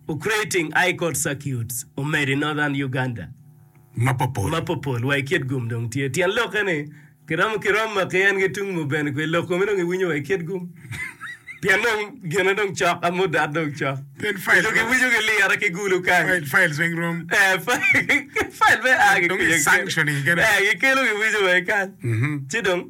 Ucreating High Court Circuits omedo i Northern Uganda mapopol wa i kit gum dong tye. Tyen lokke ni kiromo ki rom ma ki en ki tung mo bene kwe loko me dong i winyo wa i kit gum pien dong gine dong cok a mudat dong cok dong ki winyo ki lira ki gulu kany eh files weng rom eh dong i sanctioning kene eh ki kelo ki winyo wa i kany ci dong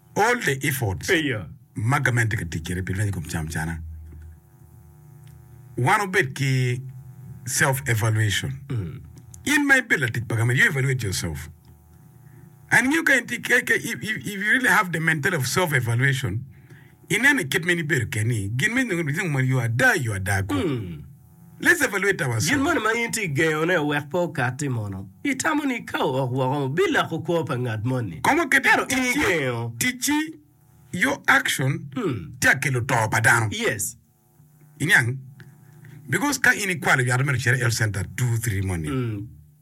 All the efforts ma gament tye ka tic kwede pi lweny i kom camcana, wan wubed ki self evaluation. In ma ibedo latic pa gament, you evaluate yourself and ngiyo ka in tye ka, ka if, if, if you really have the mentality of self evaluation, ineno i kit ma in ibedo keni, gin ma inongo, you are die, you are die kong. Lisse pa Lwita wa Gin moni ma in itye ka gengone wek pe okatti mono? Itamo ni ka ook woko biloko kwo pa ngat moni? Kong waket ni ticci yo action tye ka kelo to pa dano. Iniang? Because ka in ikwalo yat mere ocito i health center two three moni.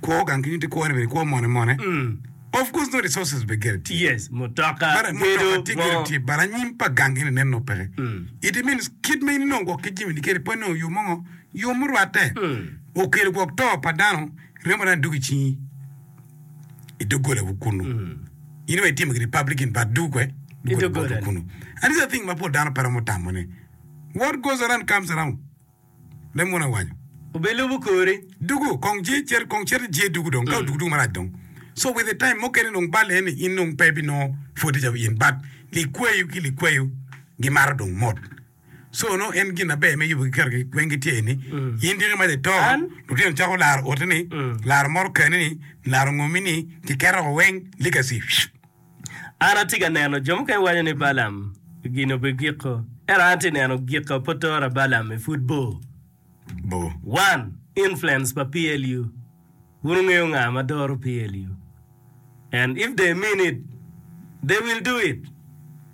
Kwo gang ki nyutti kwone bene i kwo mone mone of course no resources bene gire tye Yes, mutoka, But gedo, mutoka tye gire ngo. tye but anyim pa gang gini nen no peke it means kit ma in inongo gwok ki jimini kede pwod inongo yo mongo yo murwatte okelo gwok to pa dano remo dano duk i cingi i doggolawu kunu in wa itimo giri public in but duk we I doggola. kunu and these are things ma pol dano pe romo tamo ni what goes around comes around me munu awanyo. Obe lubu kori. Dugu kong je cito kong cito je dugu dong ka odugu dugu marac dong so with a time mukene dong bal en ni in dong pe ibi nongo pwode ca in but likweyo ki likweyo gimato dong mot so nongo en gin aber me yubu ki keto ki weng gitye eni in dyegi mac ato lutino cako laro oti ni laro moto keni ni laro ngomi ni kiketo weng legacy. An atye ka neno, jo mukene waco ni Balaam gin obedo giko, ento an atye ka neno giko apotora Balaam i pud bor. One, influence pa PLU, wun wungeyo nga ma doro PLU and if they mean it, they will do it.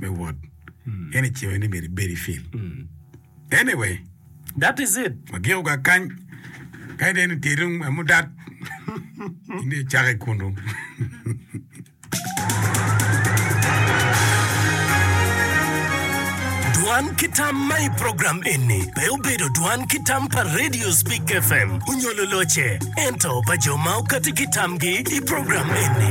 me wot en i cewe ni myero ibed i field anyway That is it. wagiko ga kany kadi dong en i tyeru ma mudat in dong icako i kunu Dwan ki tam ma i program eni pe obedo dwan ki tam pa Radio Speak FM onyo luloce, ento pa jo ma okati ki tamgi i program eni.